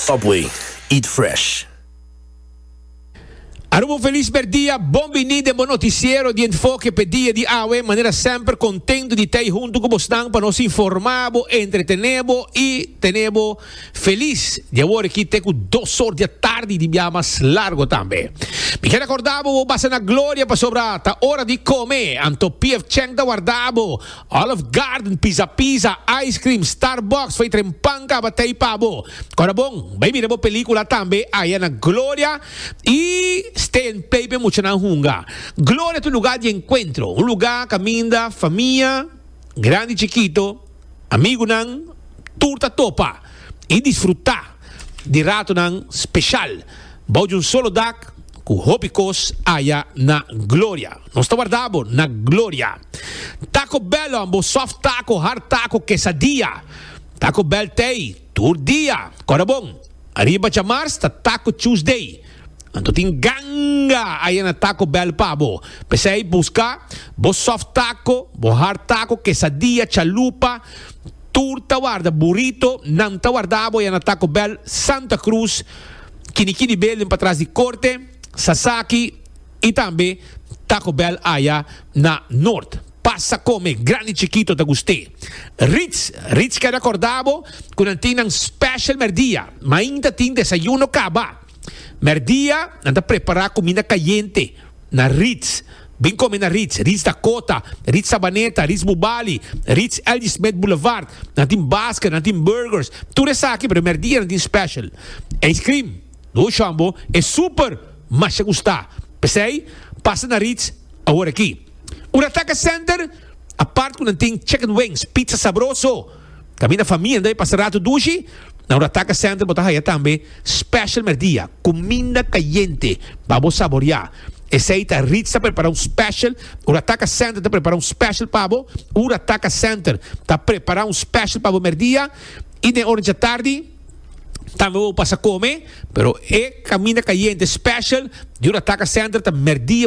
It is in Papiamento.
Subway, eat fresh. Aruba un felis merdia, bon bini den bo noticiero di Enfoke p'e dia di awe. Manera semper, contento di ta ei hunto cu bosnan pa nos informa bo, entretene bo y tene bo. Felis di awor aki te ku dos or di atardi di bia mas largo tambe. Mi ker akorda bo bo basa na gloria pasobra ta ora di kome, anto PF Chang ta warda bo, Olive Garden, Pizza Pizza, ice cream, Starbucks, fey tren pan kaba tey pa bo. Kora bon, bai mira bo pelikula tambe aya na gloria i stay and play p'e muchanan hunga. Gloria ta un luga di enkuentro, un luga kaminda famia grandi i chikito, Amigunan tur ta topa i disfrutá di ratonan speshal bou di un solo dak ku hopi kos aya na Gloria. Nos ta warda bo na Gloria. Taco Bell on bo soft taco, hard taco, quesadilla, Taco Bell tei. Tur dia, kora bon. Ariba djamars ta Taco Tuesday. Anto tin ganga aya na Taco Bell pa bo. P'esei buska bo soft taco, bo hard taco, quesadilla, chalupa, tur ta warda burrito. Nan ta warda bo aya na Taco Bell Santa Cruz, Kini Kini Building patras di Corte, Sasaki i tambe Taco Bell aya na Noord. Pasa come, grandi chikito ta gust'é. Ritz, Ritz keda korda bo ku nan tin nan special mèrdia. Mainta tin desayuno kaba. Mèrdia nan ta prepará kuminda kayente na Ritz. Bin kome na Ritz, Ritz Dakota, Ritz Sabaneta, Ritz Bubali, Ritz LG Smith Boulevard. Nan tin basket, nan tin burgers, tur esaki pero mèrdia nan tin special. Ijskrim, Lo shon bo, e super masha gusta. P'esei pasa na Ritz awor aki. Un ataka center apart ku nan tin chicken wings, pizza sabroso. Kaminda famia debe pasa ratu dushi, na un ataka center bo ta haya tambe special merdia, kuminda kayente pa bo saborea. Esei ta Ritz ta prepara un special, un ataka center ta prepara un special pa bo, un ataka center ta prepara un special pa bo merdia i den ora dje tardi tambe bo pasa kome, pero e kaminda kayente special di un ataka center ta merdia.